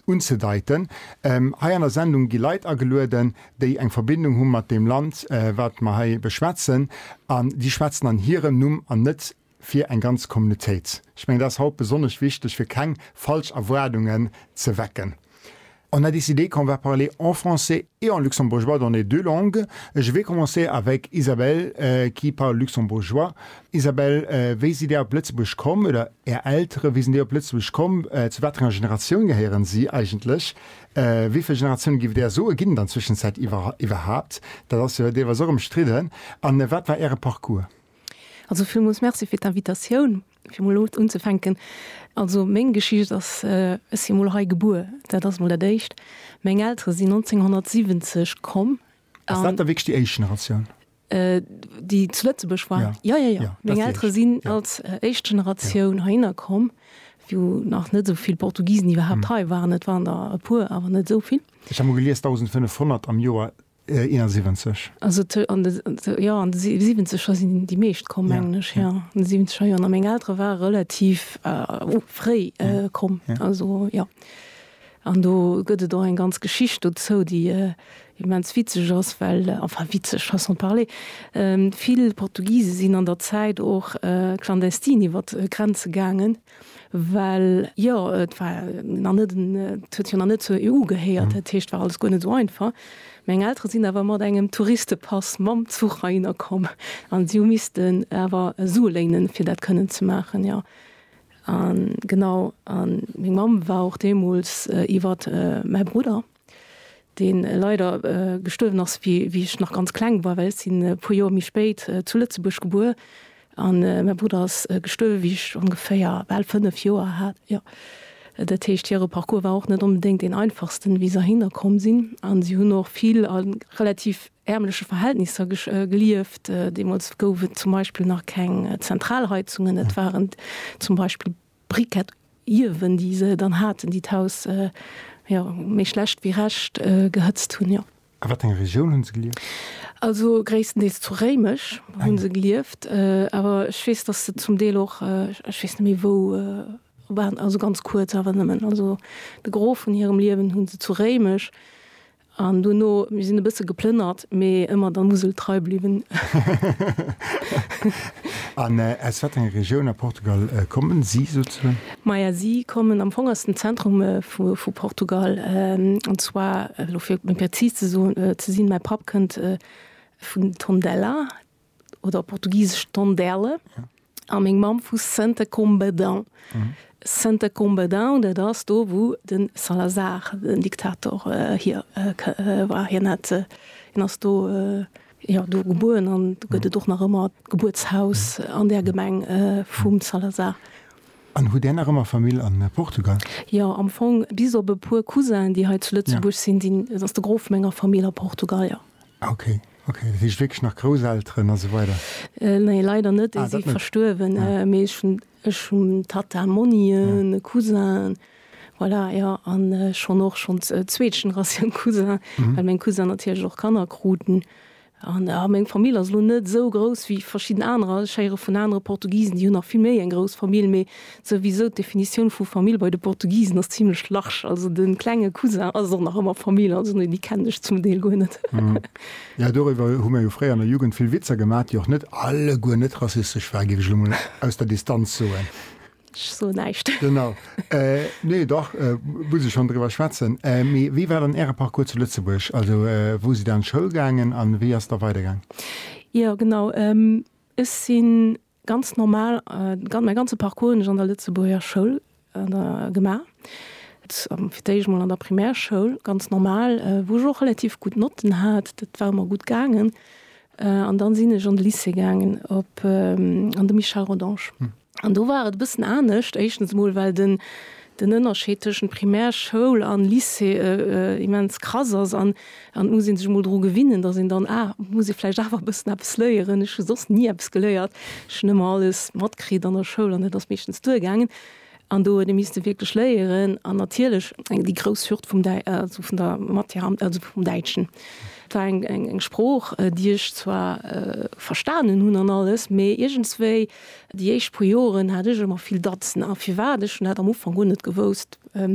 unzedeiten. Hei an der Sendung gi Leit agelueden, déi eng Verbindung hu mat deem Land, wat mer hei beschwätzen, an déi schwätzen an hirem Numm an net fir eng ganz Communautéit. Ech mengen, dat ass haut besonnesch wichteg, fir keng falsch Erwaardungen ze wecken. On a décidé qu'on va parler en français. Et en luxembourgeois d'en est deux langues. Je vais commencer avec Isabelle qui parle luxembourgeois. Isabelle, wéi sidd Dir op Lëtzebuerg komm, oder Är Eltere, wéi sinn déi op Lëtzebuerg komm? Zu wat enger Generatioun gehéieren si eigentlech? Wéi vill Generatioune giff Der soen, ginn et an Zwëschenzäit iwwerhaupt? Dat ass jo deelweis och ëmstridden. A wat war Äre Parcours? Also villmools Merci fir d'Invitatioun. Fir mol elo unzefänken, also meng Geschicht ass, ech si mol hei gebuer, dat ass mol dat éischt. Meng Eltere sinn 1970 komm. Ass dat da wierklech déi éischt Generatioun? Déi zu Lëtzebuerg war? Jo, jo, jo. Meng Eltere sinn als éischt Generatioun heihinner komm, wou nach net esou vill Portugisen iwwerhaapt hei waren. Et waren der e puer, awer net esou vill. Ech hat mol gelies, 1.500 am Joer 71. Also an de, jo, an de Siwenzeger sinn déi meescht komm, mengen ech, jo, an de Siwenzeger Joren. A meng Eltere ware relativ fréi komm, also jo. An do gëtt et och eng ganz Geschicht dozou, déi immens witzeg ass, well, enfin witzeg, façon de parler, vill Portugise sinn an der Zäit och clandestin iwwer d'Grenze gaangen, Well jo, et war nach net en, et huet jo nach net zur EU gehéiert, dat heescht, et war alles guer net esou einfach. Meng Eltere sinn awer mat engem Touristepass mam Zuch heihinner komm an si hu missten awer Sue léinen, fir dat kënnen ze maachen, jo. A genau, a meng Mamm war och deemools iwwer mäi Brudder. deen leider gestuerwen ass wéi ech nach ganz kleng war, well ech sinn e puer Joer méi spéit zu Lëtzebuerg gebuer an mäi Brudder ass gestuerwen, wéi ech ongeféier bal 5 Joer hat. Jo, dat heescht, hire Parcours war och net onbedéngt deen einfachsten, wéi se heihinner komm sinn. A si hunn och vill a relativ ärmleche Verhältnisser gelieft. Deemools gouf et zum Beispill nach keng Zentralheizungen, et waren zum Beispill Briquet iewen, déi se dann haten, déi d'Haus, jo, méi schlecht wéi recht gehëtzt hunn, jo. A wat enger Regioun hunn se gelieft? Also gréisstendeels zu Réimech hunn se gelieft, awer ech weess, datt se zum Deel och, ech weess net méi wou, waren, also ganz kuerz awer nëmmen. Also de Gros vun hirem Liewen hunn se zu Réimech An dono, mir sinn e bësse geplënnert, mee ëmmer der Musel trei bliwwen. An aus wat enger Regioun a Portugal kommen si souzesoen? Maja, si kommen am Fong aus dem Zentrum vu Portugal. An zwar, elo fir méi prezis ze sinn, mäi Papp kënnt vun Tondela. oder op Portugisesch Tondela, a meng Mamm vu Santa Combadão. Santa Combadão, dat ass do, wou de Salazar den Diktator hier war. Hien hat, hien ass do, jo, do gebueren an do gëtt et och nach ëmmer d'Gebuertshaus an där Gemeng vum Salazar. An hutt Där nach ëmmer Famill a Portugal? Jo, am Fong bis op e puer Cousinen, déi hei zu Lëtzebuerg sinn, sinn, ass de Gros vu menger Famill a Portugal, jo. Ok, ok, dat heescht wierklech nach Grousselteren a sou weider? Nee, leider net, déi si verstuerwen. Mee ech hunn, ech hunn Tata, Monnien, e Cousin, voilà, jo. An ech hunn och schonns zweet Generatioun Cousin, well meng Cousinen natierlech och Kanner kruten. An jo, meng Famill ass elo net esou grouss wéi verschidden anerer. Ech héiere vun anere Portugisen, déi hunn nach vill méi eng grouss Famill. Mee Souwisou, d'Definitioun vu Famill bei de Portugisen ass zimlech large. Also de klenge Cousin ass och nach ëmmer Famill. Also nee, déi kennen ech zum Deel guer net. Jo, doriwwer hu mir jo fréier an der Jugend vill Witzer gemaach, déi och net alleguer net rassistesch waren, géif ech elo mol aus der Distanz soen. Ech soen näischt. Genau. Nee, dach, muss ee schonn driwwer schwätzen. Mee wéi war dann Äre Parcours zu Lëtzebuerg? Also wou sidd Der an d'Schoul gaangen a wéi ass da weidergaang? Jo, genau. Ech sinn Ganz normal, mäi ganze Parcours hunn ech an der Lëtzebuerger Schoul gemaach. Fir d'éischt mol an der Primärschoul, ganz normal, wou ech och relativ gutt Notten hat, dat war ëmmer gutt gaangen. An dann sinn ech an de Lycée gaangen, op an de Michel Rodange. An do war et e bëssen anescht. Éischtens emol, well den den Ënnerscheed tëschent Primärschoul an Lycée immens krass ass an, An et muss ee sech emol dru gewinnen, datt een dann, ah, et muss ee vläicht awer e bëssen eppes léieren, ech hu soss ni eppes geléiert, ech hunn ëmmer alles matkritt an der Schoul an et ass meeschtens duergaangen. An do huet ee misste wierklech léieren. An natierlech eng, déi grouss Hürd vum Däi-, also vun der Matière, also vum Däitschen. Et war eng, eng, eng Sprooch, déi ech zwar verstanen hunn an alles, mee iergendswéi déi éischt puer Joren hat ech ëmmer vill Datzen. A firwat? Ech hunn dat am Ufank guer net gewousst.